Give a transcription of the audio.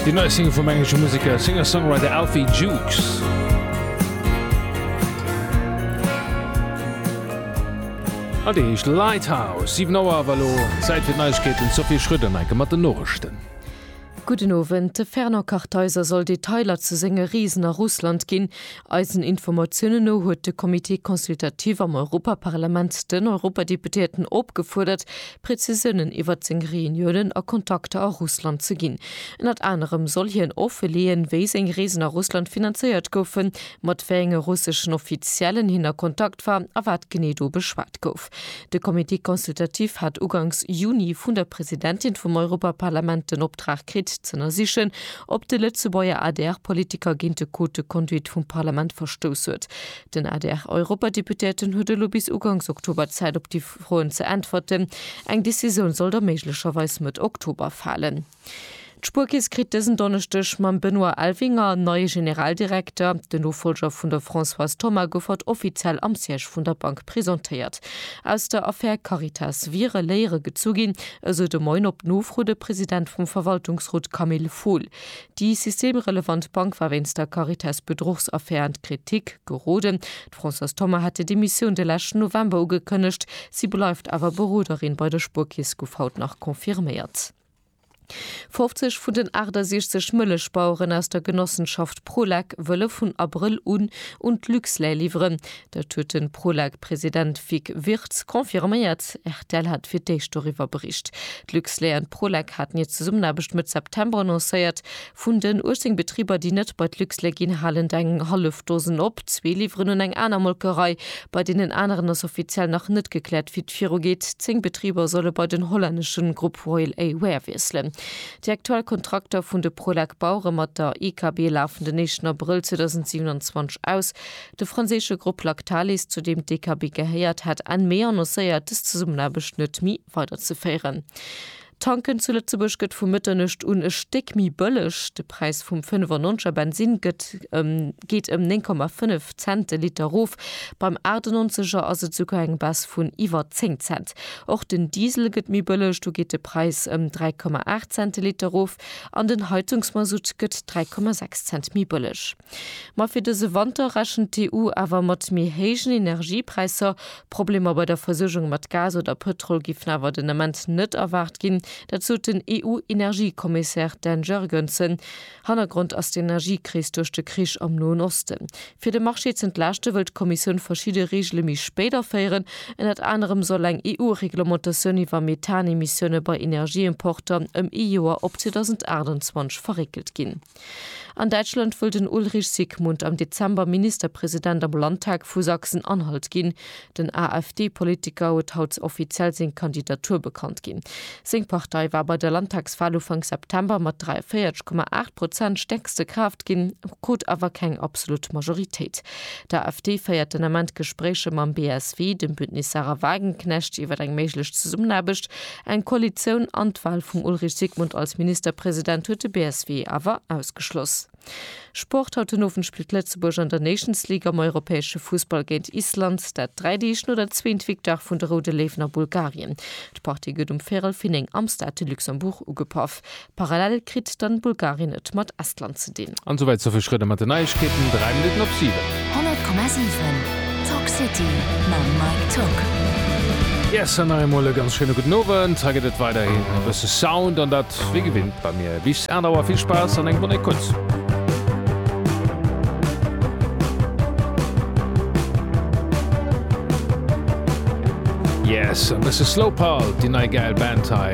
Déi nei Single vum englesche Museker a Singer-Songwriter Alfie Jukes. A déi heescht Lighthouse. 7 Auer awer elo Zäit fir d'Neiegkeeten. D'Sophie Schröder enke mat den Noriichten. Gudden Owend. De Fernand Kartheiser soll Detailer zu senge Reesen a Russland ginn. Eisen Informatiounen no huet de Comité consultatif am Europaparlament den Europadeputéierten opgefuerdert, Prezisiounen iwwert seng Reuniounen a Kontakter a Russland ze ginn. Ënnert anerem soll hien offeleeën, wéi seng Reesen a Russland finanzéiert goufen, mat wéi enge russeschen Offiziellen hien a Kontakt war a wat genee do beschwat gouf. De Comité consultatif hat ugangs Juni vun der Presidentin vum Europaparlament den Optrag kritt, z'ënnersichen, ob de Lëtzebuerger ADR-Politiker géint de Code de conduite vum Parlament verstouss huet. Den ADR-Europadeputéierten huet elo bis uganks Oktober Zäit op déi Froen ze äntwerten. Eng Decisioun soll da méiglecherweis Mëtt Oktober falen. D'Spuerkeess kritt dësen Donneschdeg mam Benoît Elvinger en neie Generaldirekter. Den Nofollger vun der Françoise Thoma gouf haut offiziell am Siège vun der Bank presentéiert. Aus der Affär Caritas wiere Léiere gezu ginn, esou de Moin op Nofro de President vum Verwaltungsrot Camille Fohl. Déi systemrelevant Bank war wéinst der Caritas-Bedruchsaffär an d'Kritik geroden. D'Françoise Thoma hat hir Demissioun de leschten November ugekënnegt. Si bleift awer Beroderin bei der Spuerkeess, gouf haut nach confirméiert. 50 vun den 68 Mëllechbaueren aus der Genossenschaft Prolec wëlle vun Abrëll un un d'Luxlait liwweren. Dat huet de Prolec-President Vic Wirtz confirméiert. Rtl hat fir d'éischt doriwwer bericht. D'Luxlait an d'Prolec haten hir Zesummenaarbecht Mëtt September annoncéiert. Vun den 18 Betriber, déi net bei d'Luxlait ginn, halen et eng hallef Dosen op. Zwee liwweren un eng aner Molkerei. Bei deenen aneren ass offiziell nach net gekläert, wéi et virugeet. Zéng Betriber solle bei den hollännesche Grupp Royal A Ware wiesselen. Déi aktuell Kontrakter vun de Prolec-Bauere mat der IKB lafen den éischten Abrëll 2027 aus. De franséische Grupp Lactalis, zu deem d'Dekabi gehéiert, hat Enn Mee annoncéiert, dës Zesummenaarbecht net méi weiderzeféieren. Tanken zu Lëtzebuerg gëtt vu Mëtternuecht un e Stéck méi bëlleg. De Präis vum 95 er Bensinn gëtt ëm geet ëm 9,5 Cent de Liter erof. Beim 98 er ass et esouguer eng Baisse vun iwwer 10 Cent. Och den Diesel gëtt méi bëlleg, do geet de Präis ëm 3,8 Cent de Liter erof an den Heizungsmasutt gëtt 3,6 Cent méi bëlleg. Ma fir dëse Wanter rechent d'EU awer mat méi héijen Energiepräisser. Problemer bei der Versuergung mat Gas oder Pëtrol géifen awer den Ament net erwaart ginn. Dat sot den EU-Energiekommissär Dan Jurgensen. Hannergrond ass d'Energiekris duerch de Krich am Noen Osten. Fir de Marché z'entlaaschte wëll d'Kommissioun verschidde Reegele méi spéit aféieren. Ënnert anerem soll eng EU-Reglementatioun iwwer Methanemissioune bei Energieimporter ëm ee Joer op 2028 verréckelt ginn. An Däitschland wëll den Ulrich Sigmund am Dezember Ministerpresident am Landtag vu Sachsen-Anhalt ginn. Den AfD-Politiker huet haut offiziell seng Kandidatur bekannt ginn. Seng Partei war bei der Landtagswal Ufank September mat 43,8 Prozent stäerkste Kraaft ginn, krut awer keng absolut Majoritéit. D'AfD féiert den Ament Gespréicher mam BSW, dem Bündnis Sarah Wagenknecht, iwwer eng méiglech Zesummenaarbecht. Eng Koalitioun an d'Wal vum Ulrich Sigmund als Ministerpresident huet de BSW awer ausgeschloss. Sport, Haut den Owend spillt Lëtzebuerg an der Nations League am europäesche Fussball géint Island, dat dräi Deeg no der zweent Victoire vun de Roude Léiwen a Bulgarien. D'Partie gëtt um Véirel fir néng am Stade de Luxembourg ugepaff. Parallel kritt dann Bulgarien et mat Estland ze dinn. An souwäit zur Virschrëtt a mat den Neiegkeeten 3 Minutten op 7. 100,7 Talk City mam Mike Tocq. Yes an nach eemol e ganz schéine gudden Owend. Hei gëtt et weiderhin e bësse Sound an dat wéi gewinnt bei mir bis 8 Auer. Vill Spaass an eng Bonne Écoute. Yes e bësse Slowpulse, déi nei gäil Band hei.